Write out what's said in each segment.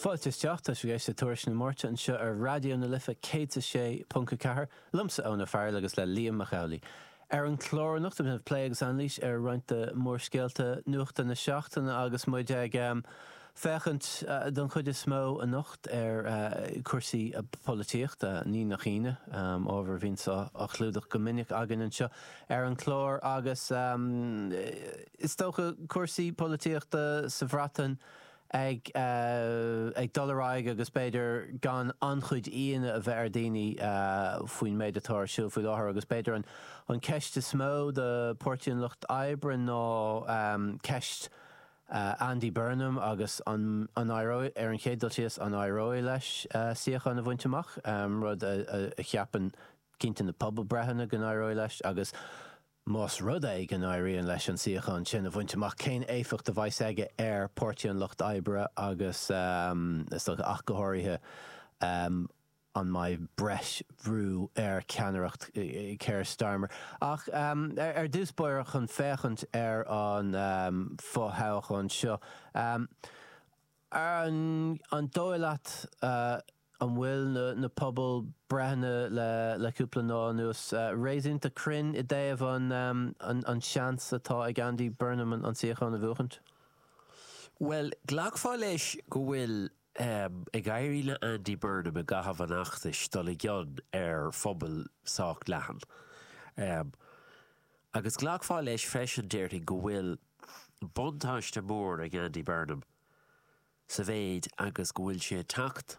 Fáilte isteach, tá sibh ag éisteacht le Tuairisc na Máirte anseo ar Raidió na Life 106.4, liomsa Eoin Ó Fearghail agus le Liam Mac Amhlaigh. Ar an chlár anocht plé agus anailís ar roinnt de mhórscéalta nuachta na seachtaine agus muid ag féachaint don chuid is mó anocht ar chúrsaí polaitíochta, ní nach ionadh, ábhar a bhíonns á chlúdach go minic againn anseo ar an chlár agus, Is dócha cúrsaí polaitíochta sa Bhreatain ag dul ar aghaidh agus b'fhéidir gan an-chuid ionadh a bheith ar dhaoine faoin méid atá ar siúl faoi láthair agus b'fhéidir an ceist is mó do Pháirtí an Lucht Oibre ná ceist Andy Burnham agus an éireoidh, ar an chéad dul síos, an éireoidh leis suíochán a bhaint amach, rud a cheapann cinnte na pobalbhreitheanna go n-éireoidh leis agus, Más rud é go n-éiríonn leis an suíochán sin a bhaint amach, cén éifeacht a bheas aige ar Páirtí an Lucht Oibre agus, is dócha, ach go háirithe, an mbeidh breis bhrú ar cheannaireacht Keir Starmer? Ach ar dtús báire, chun féachaint ar an fo-thoghchán seo, an dóigh leat An bhfuil na pobalbhreitheanna le cúpla lá anuas réasúnta cruinn i dtaobh an seans atá ag Andy Burnham an suíochán a bhuachaint? Bhuel, ghlacfá leis go bhfuil ag éirí le Andy Burnham i gcaitheamh an fheachtais dul i gcion ar phobal sách leathan. Agus ghlacfá leis freisin, déarfainn, go bhfuil buntáiste mór ag Andy Burnham. sa mhéid agus go bhfuil sé ag teacht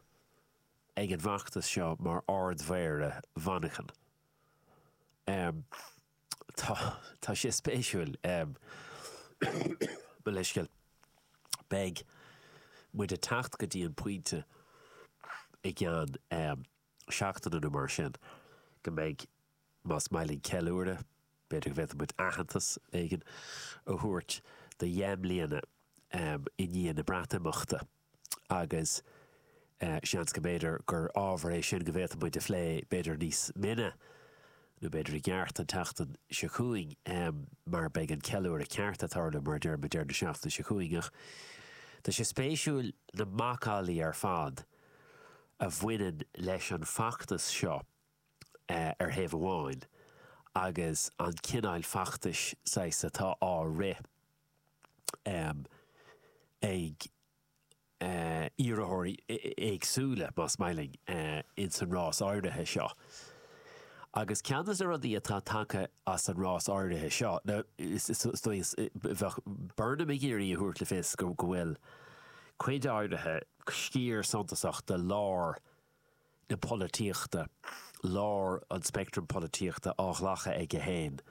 ag an bhfeachtas seo mar Ard-Mhéara Mhanchain. Tá, tá sé spéisiúil, mo leithscéal. Beidh muid ag teacht go dtí an pointe i gceann seachtaine nó mar sin go mbeidh Más maith linn ceiliúradh, b'fhéidir go bhféadfadh muid aitheantas éigin a thabhairt do dheich mbliana i ndiaidh na Breatimeachta agus seans go mb'fhéidir gur ábhar é sin go bhféadfadh muid a phlé b'fhéidir níos mine nó b'fhéidir i gceart an tseachtain seo chugainn mar beidh an ceiliúradh ceart ag tarlú, mar a deir muid, deireadh na seachtaine seo chugainn. Ach tá sé spéisiúil na macallaí ar fad a bhaineann leis an bhfeachtas seo. ar thaobh amháin agus an cineáil feachtais saghas atá á rith ag iarrthóirí éagsúla, más maith linn, ins an rás áirithe seo. Agus ceann de na rudaí atá tagtha as an rás áirithe seo, nó is dóigh, bheadh Burnham ag iarraidh a thabhairt le fios go bhfuil cuid áirithe, sciar suntasach de lár, na polaitíochta, lár an speictrim polaitíochta á ghlacadh aige féin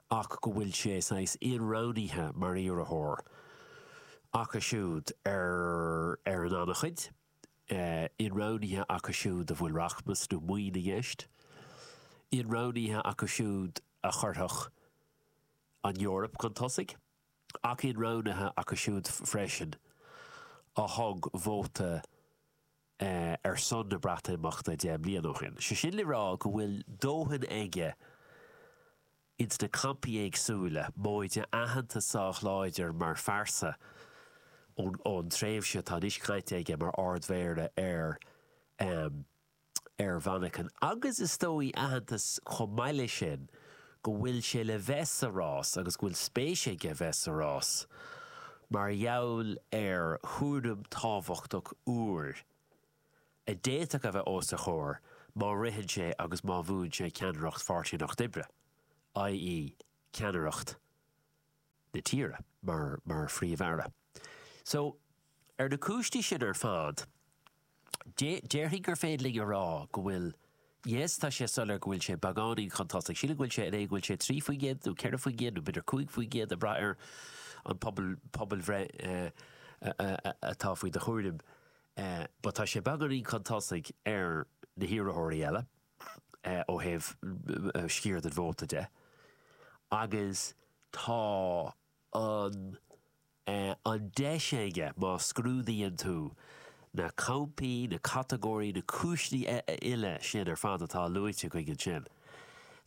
ach go bhfuil sé saghas inroghnaithe mar iarrthóir acu siúd ar ar an an-chuid, inroghnaithe acu siúd a bhfuil rachmas nó maoin i gceist, inroghnaithe acu siúd a chuirfeadh an Eoraip chun tosaigh ach inroghnaithe acu siúd freisin a thug vóta ar son na Breatimeachta deich mbliana ó shin. Sé sin le rá go bhfuil dóthain aige ins na campaí éagsúla, móide aitheantas sách láidir mar phearsa ón tréimhse atá anois caite aige mar Ard-Mhéara ar ar Mhanchain agus is dóigh aitheantas chomh maith leis sin go bhfuil sé le bheith sa rás agus go bhfuil spéis aige bheith sa rás mar gheall ar chúram tábhachtach úr a d'fhéadfadh a bheith os a chomhair má ritheann sé agus má bhuann sé ceannaireacht Pháirtí an Lucht Oibre, ie ceannaireacht. na tíre mar mar Phríomh-Aire. So, ar na cúinsí sin ar fad, déarfainn gur féidir linn a rá go bhfuil, yes, tá sé soiléir go bhfuil sé beagáinín chun tosaigh. Sílim go bhfuil sé in é go bhfuil sé trí faoin gcéad nó ceithre faoin gcéad nó b'fhéidir cúig faoin gcéad ag brath ar an pobal pobalbhreith atá faoi do chúraim but tá sé beagáinín chun tosaigh ar na hiarrthóirí eile. ó thaobh sciar den vóta de agus tá an an deis aige, má scrúdaíonn tú na campaí, na catagóirí, na cúiseanna uile sin ar fad atá luaite againn ansin,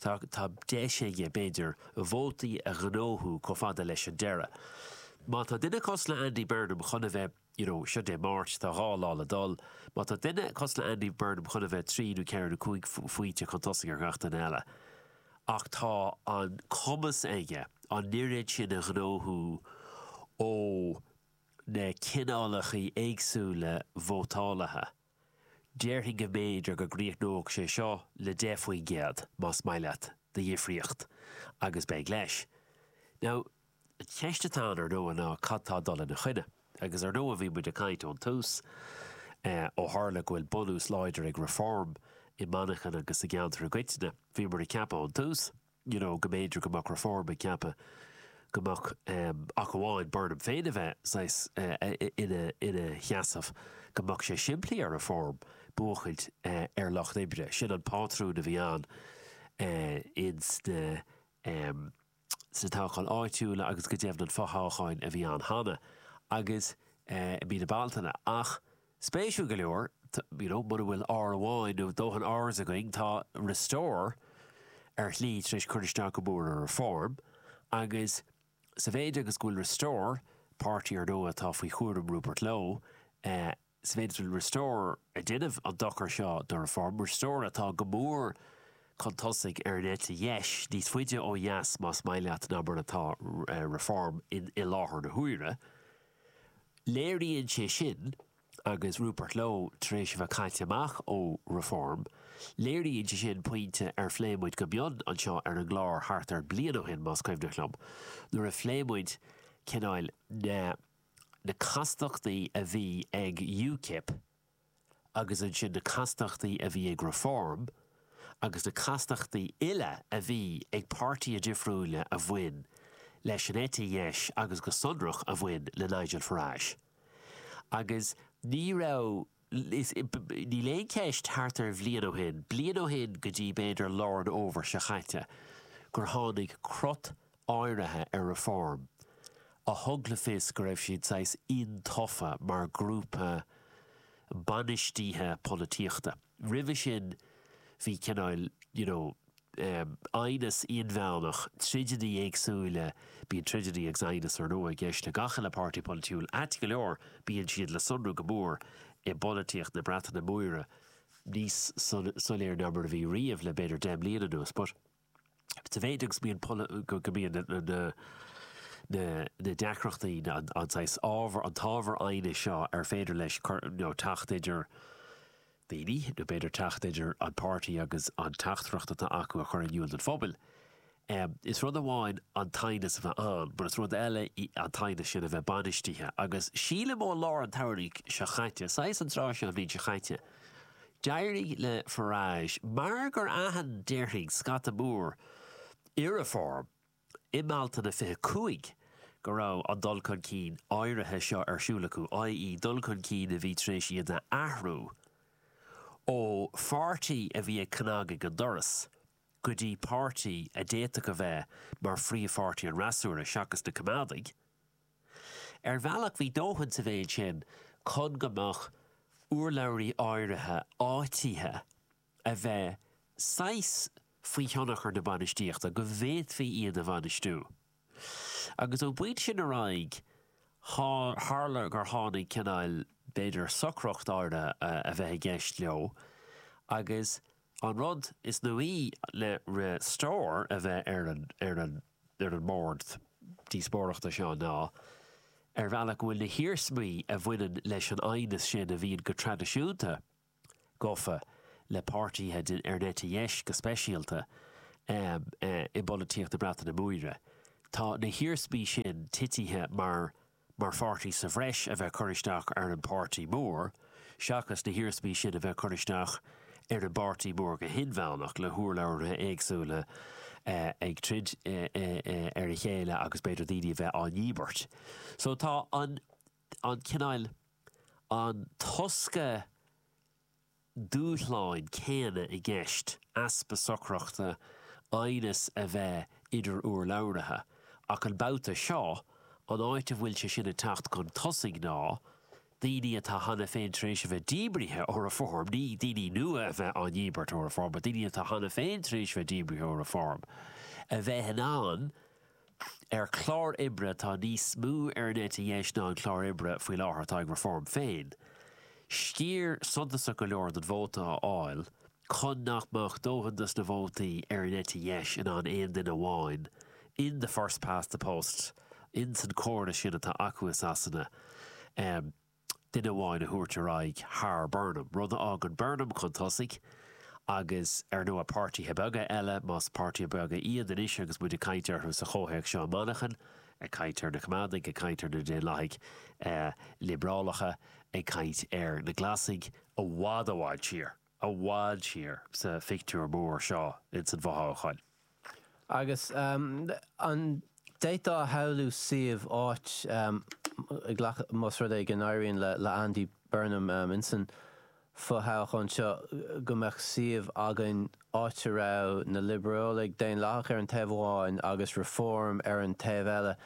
tá tá deis aige, b'fhéidir, vótaí a ghnóthú chomh fada leis an deireadh. Má tá duine cosúil le Andy Burnham chun a bheith. you know, seo Dé Máirt, tá dhá lá le dul, má tá duine cosúil le Andy Burnham chun a bheith trí nó ceithre nó cúig phointe chun tosaigh ar gach duine eile ach tá an cumas aige an oiread sin a ghnóthú ó na cineálachaí éagsúla vótálaithe, déarfainn go mb'fhéidir go gcríochnódh sé seo le deich faoin gcéad, más maith leat, de dhifríocht agus beidh leis. Now. An cheist atá ann, ar ndóigh, ná cad tá ag dul ina choinne? Agus ar ndóigh bhí muid ag caint ón tús, ó tharla go bhfuil bunús láidir ag Reform i Manchain agus sa gceantar i gcoitinne, bhíomar ag ceapadh ón tús you know go mb'fhéidir go mbeadh Reform ag ceapadh go mbeadh murach amháin Burnham féin a bheith saghas ina sheasamh, go mbeadh sé simplí ag Reform buachaint ar Lucht Oibre, sin an pátrún a bhí ann ins na. sna toghcháin áitiúla agus go deimhin an fothoghchán a bhí ann cheana agus eh i mí na Bealtaine ach spéisiúil go leor you know mura bhfuil R amháin nó dóthain Rs againn tá Restore ar shlí tar éis cur isteach go mór ar Reform agus sa mhéid agus go bhfuil Restore, páirtí ar ndóigh atá faoi chúram Rupert Lowe, eh. Sa mhéid is go bhfuil Restore ag déanamh an dochar seo do Reform. Restore atá go mór chun tosaigh ar an eite dheis, níos faide ó dheas más maith leat ná mar atá Reform i láthair na huaire. Léiríonn sé sin, agus Rupert Lowe tar éis a bheith caite amach ó Reform, léiríonn sé sin pointe ar phléigh muid go mion anseo ar an gclár thart ar bhliain ó shin, más cuimhneach linn, nuair a phléigh muid cineál na. na castachtaí a bhí ag UKIP agus ansin na castachtaí a bhí ag Reform agus na castachtaí uile a bhí ag páirtithe difriúila a bhain leis an eite dheis agus go sonrach a bhain le Nigel Farage. Agus ní raibh. Níl aon cheist, thart ar bhliain ó shin, bliain ó shin go dtí b'fhéidir lár an fhómhair seo caite, gur tháinig cruth áirithe ar Reform a thug le fios go raibh siad saghas iontaofa mar ghrúpa bainistíthe polaitíochta. Roimhe sin bhí cineál, you know, aighneas inmheánach, troideanna éagsúla, bíonn troideanna agus aighneas ar ndóigh i gceist le gach uile páirtí polaitiúil ait go leor, bíonn siad le sonrú go mór i bpolaitíocht na Breataine Móire, níos soiléire ná mar a bhí riamh le b'fhéidir deich mbliana anuas, but sa mhéid agus go mbíonn na deacrachtaí, an saghas ábhar, an t-ábhar aighnis seo ar féidir leis teacht idir daoine, nó b'fhéidir teacht idir an páirtí agus an teachtaireacht atá á cur in iúl don phobal. Is rud amháin an t-aighneas a bheith ann, mar is rud eile é an t-aighneas sin a bheith bainistithe, agus sílim ó lár an tsamhraidh seo caite, saghas an tráth seo an bhliain seo caite, d'éirigh le Farage, mar gur aithin, déarfainn, scata mór i Reform, i mBealtaine 25 go raibh an dul chun cinn áirithe seo ar siúl acu, i.e. dul chun cinn a bhí tar éis iad a athrú ó pháirtí a bhí ag cnagadh ar an doras go dtí páirtí a d'fhéadfadh a bheith mar phríomhpháirtí an fhreasúra, seachas na Coimeádaigh. Ar bhealach bhí dóthain sa mhéid sin chun go mbeadh urlabhraithe áirithe áitithe. a bheith saghas faoi thionchar na bainistíochta, go bhféadfaí iad a bhainistiú. Agus ón bpointe sin ar aghaidh, tharla gur tháinig cineál, b'fhéidir, socracht áirithe a bheith i gceist leo, agus an rud is nuaí le Restore a bheith ar an, ar an, ar an mbord díospóireachta seo ná, ar bhealach, go bhfuil na hiarsmaí a bhaineann leis an aighneas sin a bhíonn go traidisiúnta gafa le páirtithe ar an eite dheis go speisialta, i bpolaitíocht na Breataine Móire. Tá na hiarsmaí sin titithe mar mar pháirtí sa bhreis a bheith cur isteach ar an bpáirtí mór, seachas na hiarsmaí sin a bheith cur isteach ar an bpáirtí mór go hinmheánach, le hurlabhraithe éagsúla ag troid ar a chéile agus b'fhéidir daoine a bheith á ndíbirt. So tá an. an cineál, an tosca dúshláin céanna i gceist, easpa socrachta, aighneas a bheith idir urlabhraithe. Ach an babhta seo, an áit a bhfuil sé sin ag teacht chun tosaigh ná daoine atá cheana féin tar éis a bheith díbrithe ó Reform, ní daoine nua a bheith á ndíbirt ó Reform, but daoine atá cheana féin tar éis a bheith díbrithe ó Reform, a bheith in ann, ar chlár oibre atá níos mó ar an eite dheis ná an clár oibre faoi láthair atá ag Reform féin, sciar suntasach go leor den vóta a fháil chun nach mbeadh dóthain dos na vótaí ar an eite dheis in ann aon duine amháin in the first past the post, in san córas sin atá acu i Sasana. duine amháin a thabhairt ar aghaidh thar Burnham, rud a fhágann Burnham chun tosaigh agus, ar ndóigh, páirtithe beaga eile, más páirtithe beaga iad anois agus muid ag caint orthu sa chomhthéacs seo i Manchain, ag caint ar na Coimeádaigh, ag caint ar na Daonlathaigh Liobrálacha, ag caint ar na Glasaigh, i bhfad, i bhfad siar, i bhfad siar sa phictiúr mór seo ins an bhfothoghchán. Agus an bhféadfá a shamhlú suíomh, áit, a ghlacadh, más rud é go n-éiríonn le Andy Burnham insan fho-thoghchán seo, go mbeadh suíomh againn áit a raibh na Liobrálaigh, Daonlathaigh ar an taobh amháin agus Reform ar an taobh eile,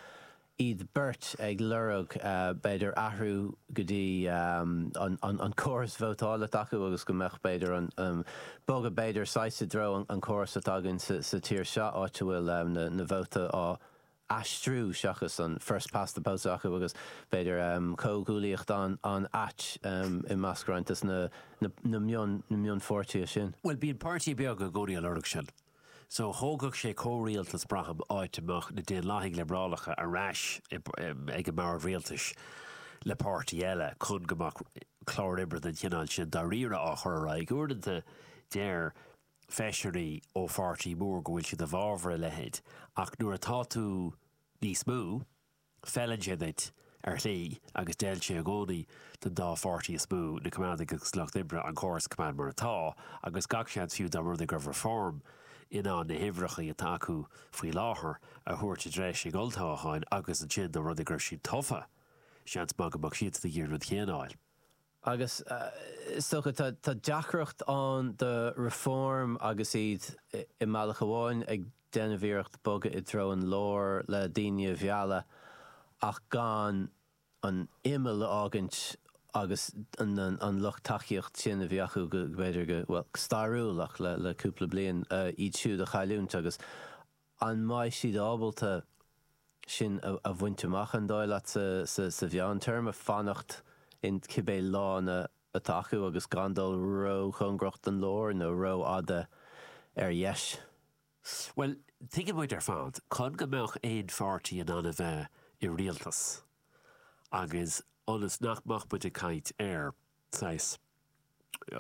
iad beirt ag lorg b'fhéidir athrú go dtí an córas vótála s'acu agus go mbeadh b'fhéidir an, bogadh b'fhéidir saghas i dtreo an córas atá againn sa tír seo áit a bhfuil na vótaí á aistriú seachas an first past the post acu agus b'fhéidir comhghuaillíocht an-ait i measc roinnt de na mionpháirtithe sin. Bhuel, bíonn páirtí beag ag iarraidh a lorg sin. So, thógfadh sé comhrialtas, braithim, áit a mbeadh na Daonlathaigh Liobrálacha ar ais ag an mbord rialtais le páirtí eile, chun go mbeadh clár oibre den chineál sin dáiríre á chur ar aghaidh. Uaireanta, deir feisirí ó pháirtí mór go bhfuil siad i bhfabhar a leithéid, ach nuair atá tú níos mó, Feileann sé duit, ar shlí, agus d'fheil sé i gcónaí don dá pháirtí is mó, na Coimeádaigh agus an Lucht Oibre, an córas coimeád mar atá, agus gach seans fiú dá mba rud é go raibh Reform in ann na huimhreacha atá acu faoi láthair a thabhairt i dtreo olltoghcháin agus ansin dá mba rud é go raibh siad tofa, seans maith go mbeadh siadsan ag iarraidh an rud chéanna a dhéanamh. Agus is dócha, tá deacracht ann do Reform agus iad i mbealach amháin ag déanamh iarracht bogadh i dtreo an lár le daoine a mhealladh ach gan an imeall a fhágaint agus an lucht tacaíocht sin a bhí acu go, b'fhéidir go, bhuel, go stairiúil ach le cúpla bliain, iad siúd a chailliúint agus. An mbeidh siad ábalta sin a bhaint amach, an dóigh leat, sa mheántéarma, fanacht in cibé lána atá acu agus gan dul róchóngarach don lár nó rófhada ar dheis? Bhuel, tuigeann muid ar fad, chun go mbeadh aon pháirtí in ann a bheith i rialtas, agus ionas nach mbeadh muid ag caint ar, saghas,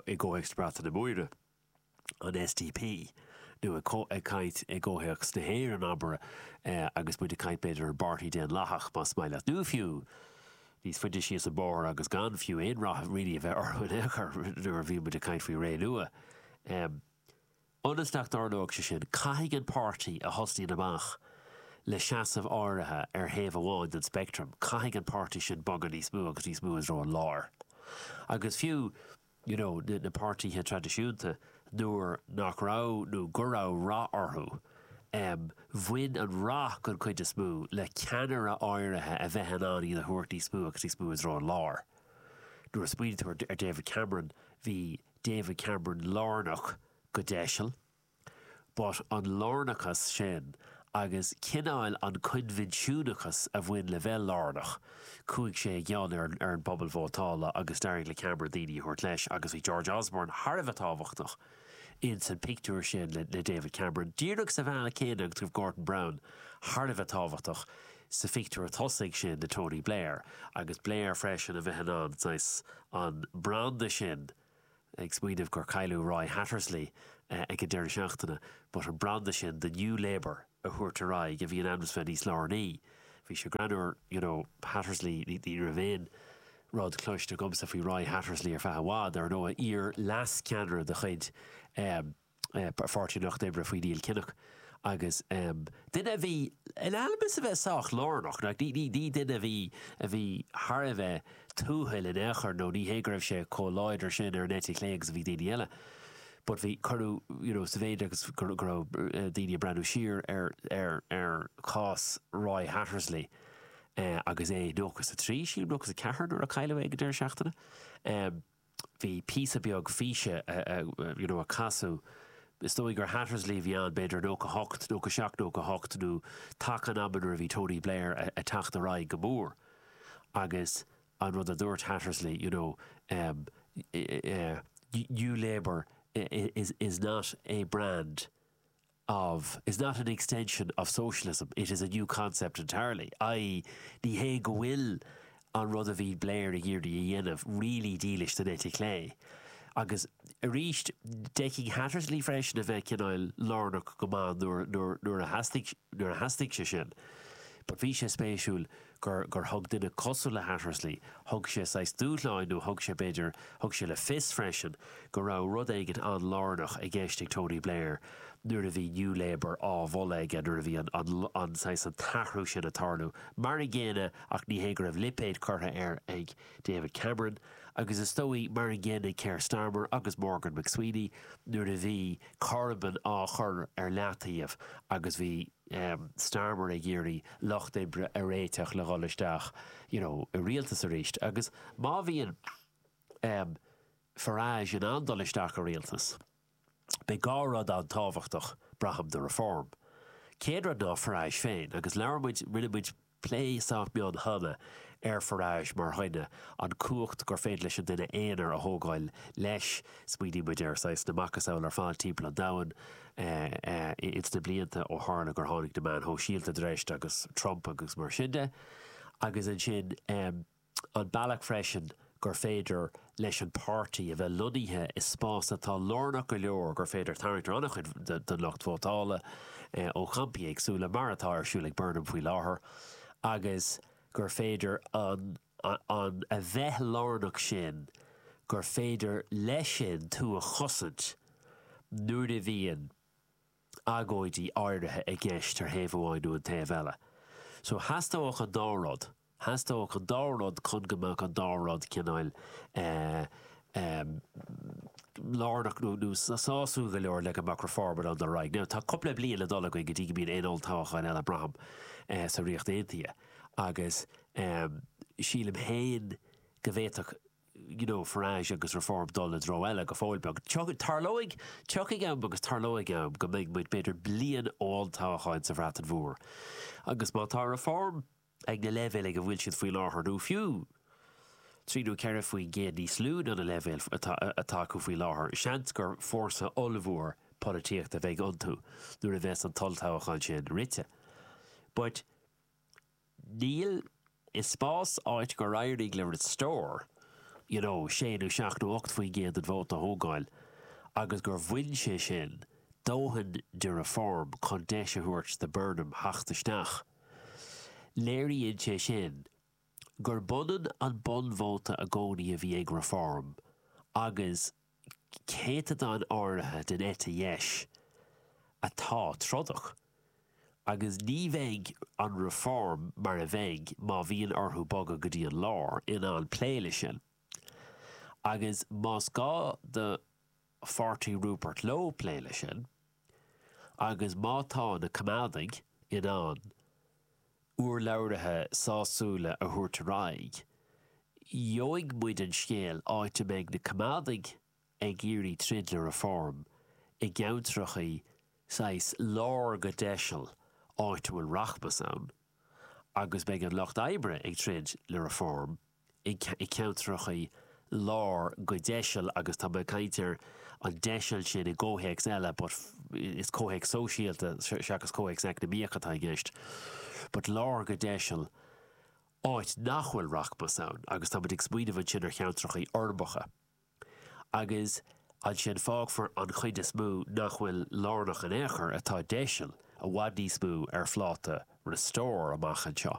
i gcomhthéacs na Breataine Móire, an SDP, nó ag caint i gcomhthéacs na hÉireann, abair, agus muid ag caint b'fhéidir ar an bPáirtí Daonlathach, más maith leat, nó fiú níos faide síos an bóthar agus gan fiú aon rath really a bheith orthu in aon chor, nuair a bhíonn muid ag caint faoi Renua. Ionas nach dtarlóidh sé sin, caithfidh an páirtí a thosnaíonn amach le seasamh áirithe ar thaobh amháin den speictream, caithfidh an páirtí sin bogadh níos mó agus níos mó i dtreo an láir. Agus fiú. you know, na páirtithe traidisiúnta, nuair nach raibh, nó go raibh rath orthu, em, bhain an rath, den chuid is mó, le ceannaire áirithe a bheith in ann iad a thabhairt níos mó agus níos mó i dtreo an láir. Nuair a smaoinítear, ar David Cameron, bhí David Cameron lárnach, go deiseal, But an lárnachas sin agus cineál an coinbhinsiúnachas a bhain le bheith lárnach, chuaigh sé i gcion ar an ar an bpobal vótála agus d'éirigh le Cameron daoine a thabhairt leis agus bhí George Osborne thar a bheith tábhachtach in san pictiúr sin le le David Cameron díreach sa bhealach céanna agus go raibh Gordon Brown thar a bheith tábhachtach sa phictiúr tosaigh sin le Tony Blair agus Blair freisin a bheith in ann saghas an branda sin ag smaoineamh gur cailleadh Roy Hattersley ag an deireadh seachtaine, but an branda sin de New Labour a thabhairt ar aghaidh a bhí in ainm is a bheith níos lárnaí. Bhí sé greannúr, you know, Hattersley, ní raibh aon rud cloiste agamsa faoi Roy Hattersley ar feadh i bhfad, ar ndóigh, iar-leascheannaire de chuid Pháirtí an Lucht Oibre faoi Neil Kinnock agus duine a bhí in ainm is a bheith sách lárnach, nó ní duine a bhí a bhí thar a bheith tuathail in aon chor nó ní hé go raibh sé chomh láidir sin ar an eite chlé agus a bhí daoine eile but bhí cuireadh, you know, sa mhéid agus go go raibh daoine ag breathnú siar ar ar ar chás Roy Hattersley agus é nócha is a trí, sílim, nó nócha is a ceathair nuair a cailleadh é ag deireadh seachtaine. bhí píosa beag físe, you know, a casadh, is dóigh gur Hattersley a bhí ann, b'fhéidir i nócha hocht, nócha seacht, nócha hocht, nó taca an ama nuair a bhí Tony Blair a' teacht ar aghaidh go mór. Agus an rud a dúirt Hattersley, you know, ehm, eh, eh, New Labour is, is not a brand, of, is not an extension of socialism, it is a new concept entirely', i.e. ní hé go bhfuil an rud a bhí Blair ag iarraidh a dhéanamh really dílis don eite chlé. Agus arís, d'fheicfinn Hattersley freisin a bheith cineál lárnach go maith nuair a theastaigh sé sin. But bhí sé spéisiúil gur, gur thug duine cosúil le Hattersley, thug sé saghas dúshlán nó thug sé, b'fhéidir, thug sé le fios freisin go raibh rud éigin an-lárnach i gceist ag Tony Blair nuair a bhí New Labour á mholadh aige, nuair a bhí an, an, an, saghas, an t-athrú sin ag tarlú. Mar an gcéanna, ach ní hé go raibh lipéad curtha air ag David Cameron, agus is dóigh, mar an gcéanna ag Keir Starmer agus Morgan McSweeney nuair a bhí Corbyn á chur ar leataobh agus bhí, Starmer ag iarraidh Lucht Oibre a réiteach le dhul isteach you know i rialtas arís agus má bhíonn Farage in ann dul isteach i rialtas beidh dhá rud an-tábhachtach braithim do Reform. Céad rud ná Farage féin agus labhair muid, rinne muid, Plé sách mion cheana ar Farage mar dhuine, an cumhacht gur féidir leis an duine aonair a thógáil leis. Smaoinigh muid ar saghas na macasamhla ar fad timpeall an domhain ins na blianta ó tharla gur tháinig na meáin shóisialta chun treise agus Trump agus mar sin de agus ansin, An bealach freisin gur féidir leis an páirtí a bheith lonnaithe i spás atá lárnach go leor gur féidir tarraingt ar an-chuid den lucht vótála ó champaí éagsúla, mar atá ar siúl ag Burnham faoi láthair, agus gur féidir an a bheith lárnach sin gur féidir leis sin tú a chosaint nuair a bhíonn. agóidí áirithe i gceist ar thaobh amháin nó an taobh eile. So, theastódh an dá rud, theastódh an dá rud chun go mbeadh an dá rud cineáil lárnach nó nó sásúil go leor le go mbeadh Reform in ann dul ar aghaidh. Now, tá cúpla bliain le dul againn go dtí go mbíonn aon olltoghchán eile, braithim, sa Ríocht Aontaithe agus sílim féin go bhféadfadh you know, Farage agus Reform dul i dtreo eile go fóill beag. Tarlóidh, tiocfaidh am agus tarlóidh am go mbeidh muid, b'fhéidir, bliain ón toghchán sa Bhreatain Mhór. Agus má tá Reform ag na leibhéil ag a bhfuil siad faoi láthair, nó fiú trí nó ceithre faoin gcéad níos lú ná na leibhéil atá acu faoi láthair, seans gur fórsa ollmhór polaitíochta a bheidh iontu nuair a bheas an t-olltoghchán sin rite. But. Níl, i spás áit gur éirigh le Restore, you know, sé nó seacht nó ocht faoin gcéad den vóta a thógáil agus gur bhain sé sin dóthain de Reform chun deis a thabhairt do Burnham theacht isteach. Léiríonn sé sin gurb ionann an bunvóta i gcónaí a bhí ag Reform agus. céatadán áirithe den eite dheis atá trodach, agus ní bheidh an Reform, mar a bheinn, má bhíonn orthu bogadh go dtí an lár, in ann plé leis sin. Agus más gá do pháirtí Rupert Lowe plé leis sin, agus má tá na Coimeádaigh in ann urlabhraithe sásúla a thabhairt ar aghaidh. Gheobhaidh muid an scéal áit a mbeidh na coimeádaigh ag iarraidh troid le Reform i gceantracha saghas lár go deiseal áit a bhfuil rachmas ann agus beidh an lucht oibre ag troid le Reform i gceantracha lár go deiseal agus tá mé ag caint ar an deiseal sin i gcomhthéacs eile but is comhthéacs sóisialta seachas comhthéacs eacnamaíoch atá i gceist but lár go deiseal áit nach bhfuil rachmas ann agus táimid ag smaoineamh ansin ar cheantracha uirbeacha agus ansin fágfar an chuid is mó nach bhfuil lárnach in aon chor atá deiseal i bhfad níos mó ar phláta Restore amach anseo.